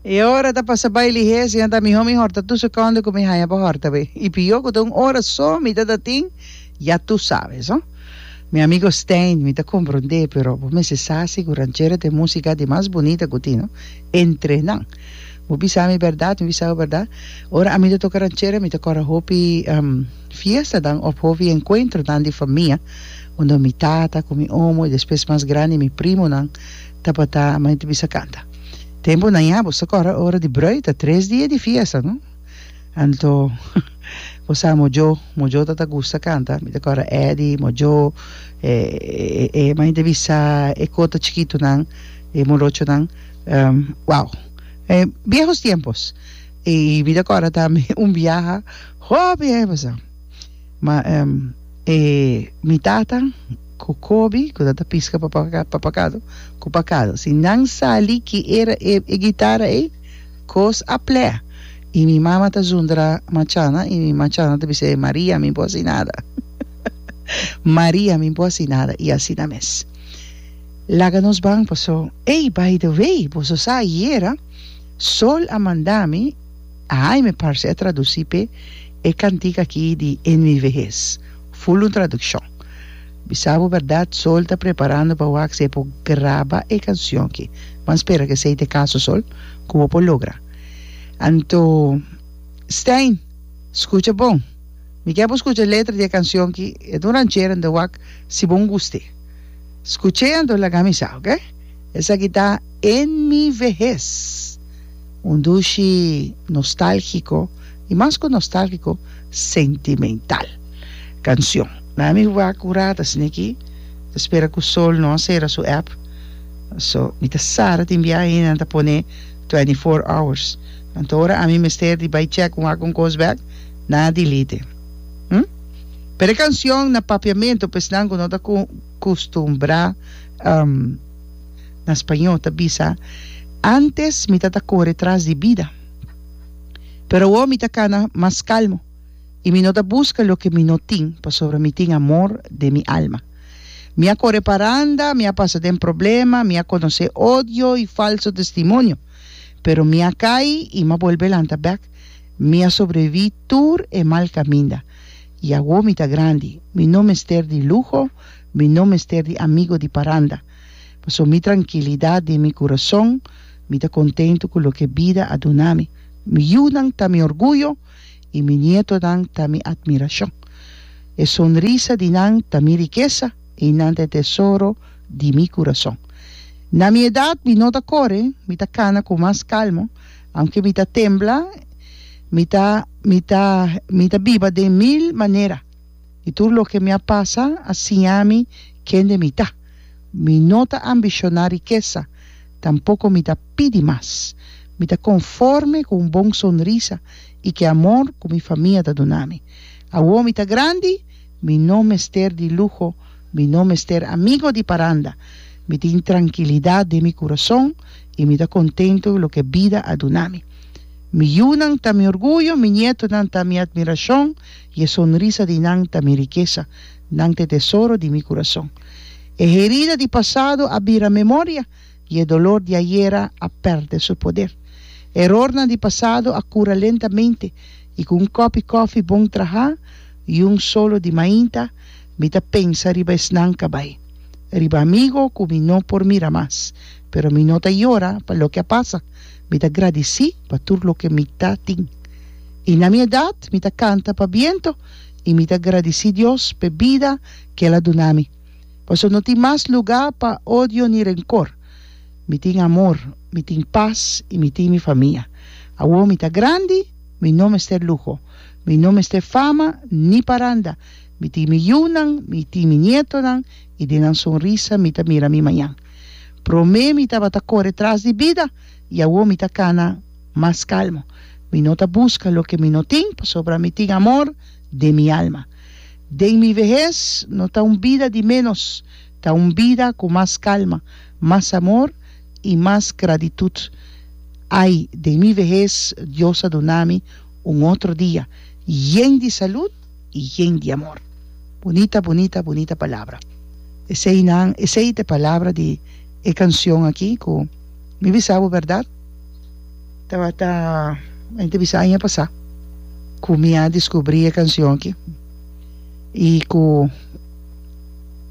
E ora ta pasa bai lihes i a ta mihó mi hòrta tur sekondo ku mi haña pa hòrta be. I pihó ku ta un ora so mi ta ta tin, ya tur sabes. Ho, mi amigo Stijn, mi ta komprondé, pero bo mester sa si ku ranchera ta e músika di mas bunita ku tin, no? Entre nan. Bo bisa mi bèrdat, mi bisa bo bèrdat, ora ami ta toka ranchera mi ta kòrda hopi fiestanan òf hopi enkuentronan di famia unda mi tata ku mi omo i despues mas grandi mi primonan tabata, mi ta bisa kanta. Tempunan ya bo sa kòrda ora di brùi ta tres dia di fiesta no? Anto bo sa Mojo, Mojo ta ta gusta kanta, mi ta kòrda Eddy, Mojo, e e e mainta bisa e kota chikitunan, e morochonan, wow! E viejos tiempos! I mi ta kòrda tambe un biaha hopi aña pasá. Ma e mi tata ku Kobi ku ta piska pa papakado ku pakado si nan sali ki era e gitara ei kos a plè i mi mama ta zundra machana i mi machana ta bis'é Maria mi bo hasi nada Maria mi bo hasi nada i asina mes laga nos ban paso ei by the way boso sa ayera Sol a manda mi. Ai me parse a traduci p'e e cantica aki di NVVS. Full un traduccion. Bisa bo berdad Sol ta preparando pa wak si e por graba e cancion aki. Bo a spera cu esey ta e caso Sol? Cu bo por logra. Anto Stijn, scucha bon. Mi kier bo scucha letra di e cancion aki. E ta un ranchera, mi ta wak si bo nguste. Scuch'e anto laga mi sa, ok? Esaki ta NVVS. Un dushi nostálgiko i mas ku nostálgiko, sentimental kanshon. Na mi wak un rata sini aki, ta spera ku Sol no a sera su app, so mi ta sa ta tin biaha i nan ta pone twenty four hours. Anto ora ami mester di bai chèk un wak un kos bèk, nan a dilite. Hm? Pero e kanshon na papiamentu pa esnan ku no ta kustumbrá. na spañó, ta bisa, Antes mi ta ta kore tras di bida, pero awor mi ta kana mas kalmo i mi no ta buska loke mi no tin, pasobra mi tin amor den mi alma. Mi a kore paranda, mi a pasa den problema, mi a konosé odio i falso testimonio, pero mi a kai i mi a bolbe lanta bèk, mi a sobreviví tur e mal kaminda. I awor mi ta grandi, mi no mester di luho, mi no mester di amigo di paranda. Pasobra mi trankilidat den mi kurason, mi ta kontentu ku loke bida a duna mi. Mi yunan ta mi orguyo i mi nietonan ta mi atmirashon. E sonrisa di nan ta mi rikesa i nan ta e tesoro di mi kurason. Na mi edat mi no ta kore, mi ta kana ku mas kalmo, aunke mi ta tembla, mi ta mi ta mi ta biba den mil manera. i tur loke mi a pasa a siña mi kende mi ta. Mi no ta ambishoná rikesa, tampoko mi ta pidi mas. Mi ta konforme ku un bon sonrisa i ki amor ku mi famia ta duna mi. Awor mi ta grandi, mi no mester di luho, mi no mester amigo di paranda. Mi tin trankilidat den mi kurason i mi ta kontentu ku loke bida a duna mi. Mi yunan ta mi orguyo, mi nietonan ta mi atmirashon. I e sonrisa di nan ta mi rikesa, nan ta e tesoro di mi kurason. E herida di pasado a bira memoria, i e dolor di ayera a pèrdè su poder. Erornan di pasado a kura lentamente, i ku un kòpi kòfi bon trahá i un solo di mainta, mi ta pensa riba esnan kabay, riba amigo ku mi no por mira mas. Pero mi no ta yora pa loke a pasa. Mi ta gradisí pa tur loke mi ta tin. I na mi edat mi ta kanta pa bientu i mi ta gradisí Dios p'e bida ku el a duna mi. Paso no tin mas lugá pa odio ni renkor. Mi tin amor, mi tin pas i mi tin mi famia. Awor mi ta grandi, mi no mester luho. Mi no mester fama ni paranda. Mi tin mi yunan, mi tin mi nietonan i den nan sonrisa mi ta mira mi mañan. Promé mi tabata kore tras di bida i awor mi ta kana mas kalmo. Mi no ta buska loke mi no tin pasobra mi tin amor den mi alma. Den mi vehes no ta un bida di ménos, ta un bida ku mas kalma, mas amor i mas gratitut. Ai den mi vehes Dios a duna mi un otro dia yen di salut. y yen di amor. Bunita bunita bunita palabra. Esey nan esey te palabra di e cancion aki cu mi bisa bo berdad tabata mi ta bisa aña pasa cu mi a descubri e cancion aki y cu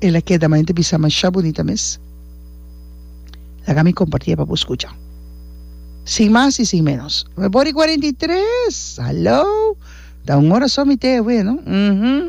el a keda ma mi ta bisa masha bunita mes. Laga mi comparti e pa bo scucha. Sin mas y sin menos. Me por di cuarenta y tres! Hallo! Ta un ora so mi te awe, no? Uhum.